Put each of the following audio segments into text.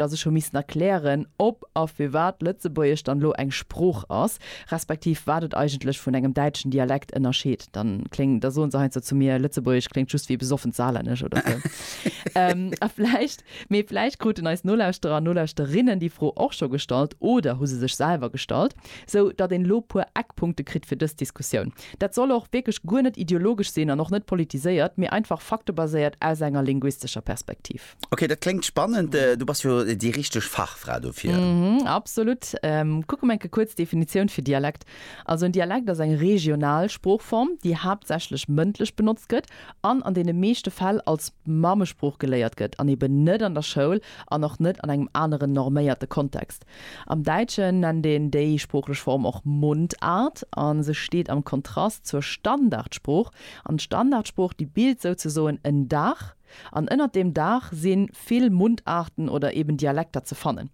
datt ech hu missen erklären, ob a firwat d'Lëtzebuergesch dann elo eng Sprooch ass, respektiv wat et eigentlech vun engem däitschen Dialekt ënnerscheet. Dann kléng, da soen se heiansdo zu mir, Lëtzebuergesch kléngt just wéi besoffent Saarlännesch oder sou. A vläicht, mee vläicht kruten eis Nolauschterer an Nolauschterinnen déi Fro och scho gestallt oder hu se sech selwer gestallt, sou datt een elo puer Eckpunkte kritt fir dës Diskussioun. Dat soll och wierklech guer net ideologesch sinn an och net politiséiert, mee einfach faktebaséiert aus enger linguistescher Perspektiv. Okay, dat kléngt spannend. Äh, du bass jo déi richteg Fachfra dofir. Mhm, absolut. Ähm, kucke mer enke kuerz Definitioun fir Dialekt. Also en Dialekt ass eng regional Sproochform, déi haaptsächlech mëndlech benotzt gëtt an an deene meeschte Fäll als Mammesprooch geléiert gëtt an eben net an der Schoul an och net an engem aneren norméierte Kontext. Am Däitschen nennt een déi sproochlech Form och Mundart a se steet am Kontrast zur Standardsprooch an d'Standardsprooch, déi bilt souzesoen en Daach, An ënnert deem Daach si vill Mundarten oder eben Dialekter ze fannen.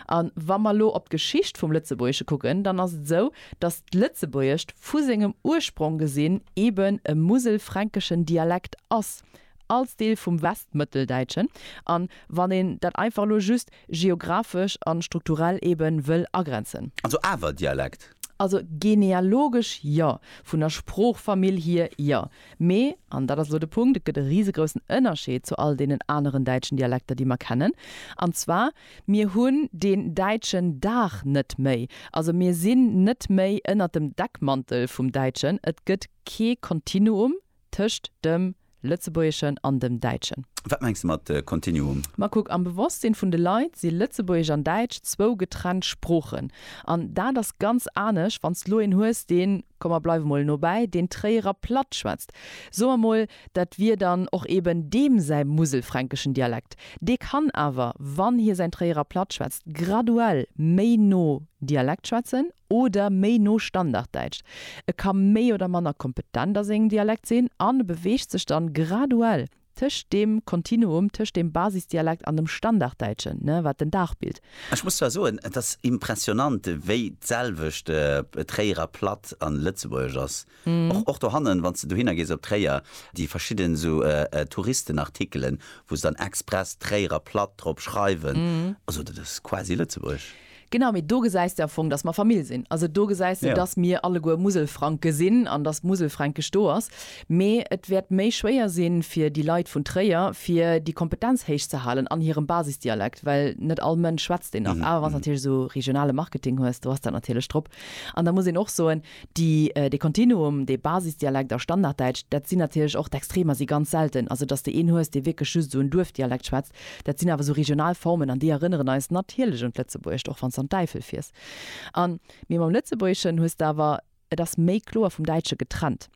A wa mer elo op d'Geschicht vum Lëtzebuergesche kucken, dann ass et esou, datt d'Lëtzebuergescht vu sengem Ursprong gesinn eben e muselfränkeschen Dialekt ass, als Deel vum Westmëtteldäitschen, a wann een dat einfach elo just geographesch a strukturell eebe wëll agrenzen. Also awer Dialekt? Also genealogesch jo, vun der Sproochfamill hier jo, Mee, an dat ass elo de Punkt, et gëtt e risegroussen Ënnerscheed zu all deenen aneren däitschen Dialekter, déi mer kennen, an zwar, Mir hunn deen däitschen Daach net méi. Also mir sinn net méi ënnert dem Deckmantel vum Däitschen. Et gëtt kee Kontinuum tëscht dem Lëtzebuergeschen an dem Däitschen. Wat mengs de mat Kontinuum? Ma kuck, am Bewosstsinn vun de Leit si Lëtzebuergesch an Däitsch zwou getrennt Sproochen. An dat ass ganz anesch, wann s de lo een hues, deen, komm mer bleiwe mol nobäi, deen Tréierer Platt schwätzt, soe mer mol, dat wier dann och eben deem säi muselfränkeschen Dialekt. Dee kann awer, wann hie säin Tréierer Platt schwätzt, graduell méi no Dialekt schwätzen oder méi no Standarddäitsch. E ka méi oder manner kompetent a sengem Dialekt sinn an e beweegt sech dann graduell tëscht deem Kontinuum tëscht dem Basisdialekt an dem Standarddäitschen, ne, wat den Dag bilt. Ech muss zwar soen, et ass impressionant, wéi d'selwecht Tréierer Platt a Lëtzebuergesch ass. Och, och dohannen, wann s de dohinner gees op Tréier, déi verschidden esou Touristenartikelen, wou se dann express Tréierer Platt drop schreiwen, also dat ass quasi Lëtzebuerg. Genau, mee do gesäis de am Fong, dass mer Famill sinn. Also do gesäis de, dass mir alleguer Muselfranke sinn an dass Muselfränkesch do ass. Mee et wäert méi schwéier sinn, fir déi Leit vun Tréier, fir déi Kompetenz héich ze halen an hirem Basisdialekt, well net all Mënsch schwätzt deen nach. Awer wann s de natierlech esou regionale Marketing hues, do ass dat natierlech drop. An da muss een och soen, déi, dee Kontinuum, dee Basisdialekt a Standarddäitsch, dat sinn natierlech och d'Extremer, si ganz selten. Also dass de een hues, dee wierklech just esou en Duerfdialekt schwätzt. Dat sinn awer esou regional Formen an déi erënneren eis natierlech un d'Lëtzebuergescht, och wann s de an d'Äifel fiers. An, mee mam Lëtzebuergeschen hues de awer, et ass méi kloer vum Däitsche getrennt.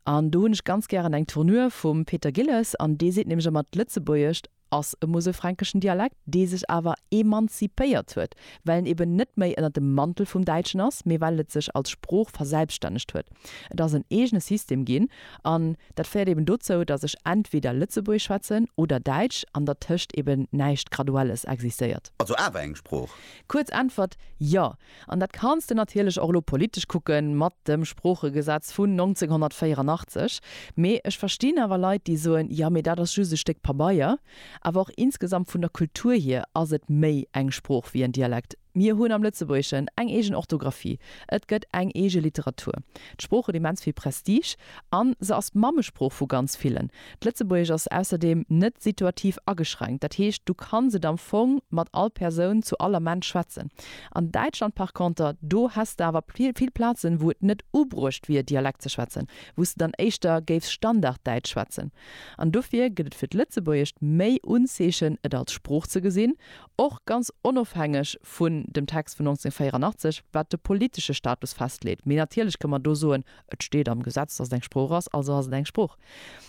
An do hunn ech ganz gären eng Tournure vum Peter Gilles an dee seet nämlech ëmmer, d'Lëtzebuergescht ass e muselfränkeschen Dialekt, dee sech awer emanzipéiert huet, well en eben net méi ënner dem Mantel vum Däitschen ass, mee well et sech als Sprooch verselbstännegt huet. Et ass en eegene System ginn An dat féiert eben dozou, datt ech entweder Lëtzebuergesch schwätzen oder Däitsch an dertëscht eben näischt Graduelles existéiert. Also awer eng Sprooch? Kuerz Äntwert, Jo. An dat kanns de natierlech och elo politesch kucke mat dem Sproochegesetz vun 1984. Mee ech verstinn awer Leit, déi soen, jo, mee dat ass just e Stéck Pabeier. Awer och insgesamt vun der Kultur hier ass et méi eng Sprooch wéi en Dialekt. Mir hunn am Lëtzebuergeschen eng eegen Orthografie, et gëtt eng eege Literatur. D'Sprooch huet immens vill Prestige a se ass d'Mammesprooch vu ganz villen. D'Lëtzebuergesch ass ausserdeem net situativ ageschränkt, dat heescht, du kanns et am Fong mat all Persoun zu all Ament schwätzen. An Däitschland par conter, do häss de awer vill Plazen, wou et net ubruecht wier, Dialekt ze schwätzen, wou s de dann éischter géifs Standarddäitsch schwätzen. An dofir gëtt et fir d'Lëtzebuergescht méi Unzeechen, et als Sprooch ze gesinn, och ganz onofhängeg vun dem Text vun 1984, wat de politesche Status festleet. Mee natierlech kënne mer do soen, Et steet am Gesetz, dass et eng Sprooch ass, also ass et eng Sprooch.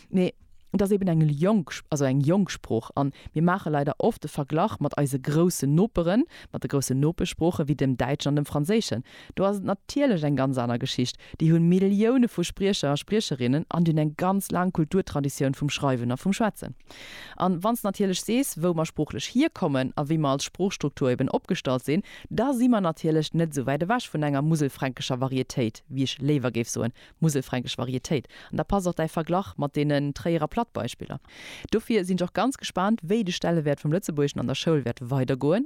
Mee et ass eben eng jonk, also eng jonk Sprooch. A mir maache leider oft de Verglach mat eise groussen Noperen, mat de groussen Nopeschsproochen, wéi dem Däitschen an dem Franséischen. Do ass et natierlech eng ganz aner Geschicht. Déi hunn Millioune vu Spriecher a Spriecherinnen an déi hunn eng ganz laang Kulturtraditioun vum Schreiwen a vum Schwätzen. An wann s natierlech sees, wou mer sproochlech hierkommen a wéi mer als Sproochstruktur eben opgestallt sinn, da si mer natierlech net esou wäit ewech vun enger muselfränkescher Varietéit, wéi ech léiwer géif soen, muselfränkesch Varietéit. An da passt och däi Verglach mat deenen Tréierer Plattbeispiller. Dofir sinn ech och ganz gespaant, wéi de Stellewäert vum Lëtzebuergeschen an der Schoul wäert weidergoen.